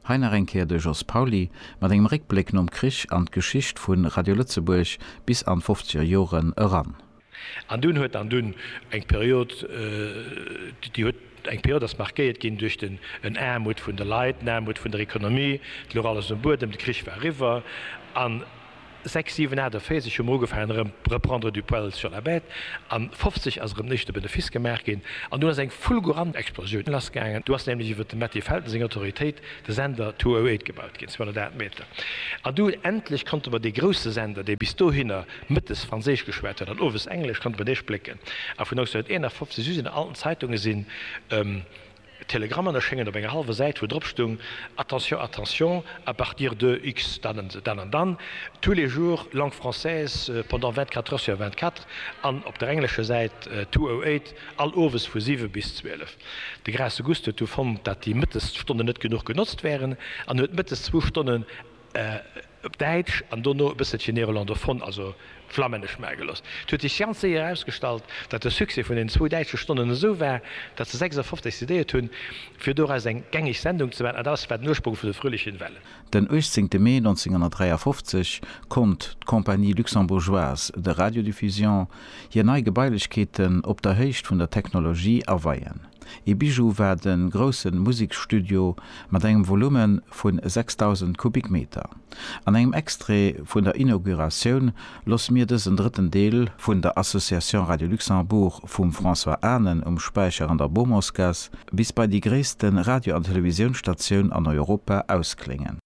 Hei nach eng Kéier de Jos Pauly mat engem Réckbléck nom Krich an d'Geschicht vu Radio Lëtzebuerg bis an d'fofzeger Joren eran. An dunn huet an dunn eng Period, déi huet eng Period ass markéiert ginn duerch den en Aarmut vun de Leit, en Aarmut vun der Economie, et louch alles um Buedem, de Krich war eriwwer an Sechs, siwen, aacht a véierzeg hu mer ugefaangen erëm reprendre du poil sur la bête, a 50 ass erëm nees de Benefice gemaach ginn, an dunn ass eng fulgurant Explosioun lassgaangen. Du ass nämlech iwwer dem Matti Felten seng Autoritéit de Sender 208 gebaut ginn, 208 Meter, an du endlech konnte mer dee grousse Sender, dee bis dohinner mëttes Franséisch geschwat huet an owes Englesch, konnte mer dee splécken. A vun 1951 u sinn an allen Zeitungen sinn. Telegrammen erschéngen op enger hallwer Säit, wou drop stung, Attention, attention, à partir de X dann an dann an dann, tous les jours, langue française, pendant 24 heures sur 24, an op der englescher Säit, 208, all owes vu 7 bis 12. De Graas Auguste huet du fonnt, dat déi mëttes Stonnen net genuch genotzt wären, an huet mëttes zwou Stonnen, op Däitsch an dono e bësselchen néerlandophone, also flammännesch, maache gelooss. Et huet sech ganz séier erausgestallt, datt de Succès vun den zwou däitsche Stonnen esou war, datt se 56 decidéiert hunn, fir doraus eng gängeg Sendung ze maachen, an dat war den Urspronk vun de fröhlichen Wellen. Den 18 Mee 1953 konnt d'Compagnie luxembourgeoise de Radiodiffusion hir nei Gebailechkeeten op der Héicht vun der Technologie aweien. Ee Bijou war de grousse Museksstudio mat engem Volume vu 6.000 Kubikmeter. An engem Extrait vun der Inauguratioun loosse mir dësen drëtten Deel vun der Association Radio Luxembourg vum François Anen um Späicher an der Beaumontsgaass bis bei déi gréisste Radio an Televisiounsstatioun an Europa ausklénge.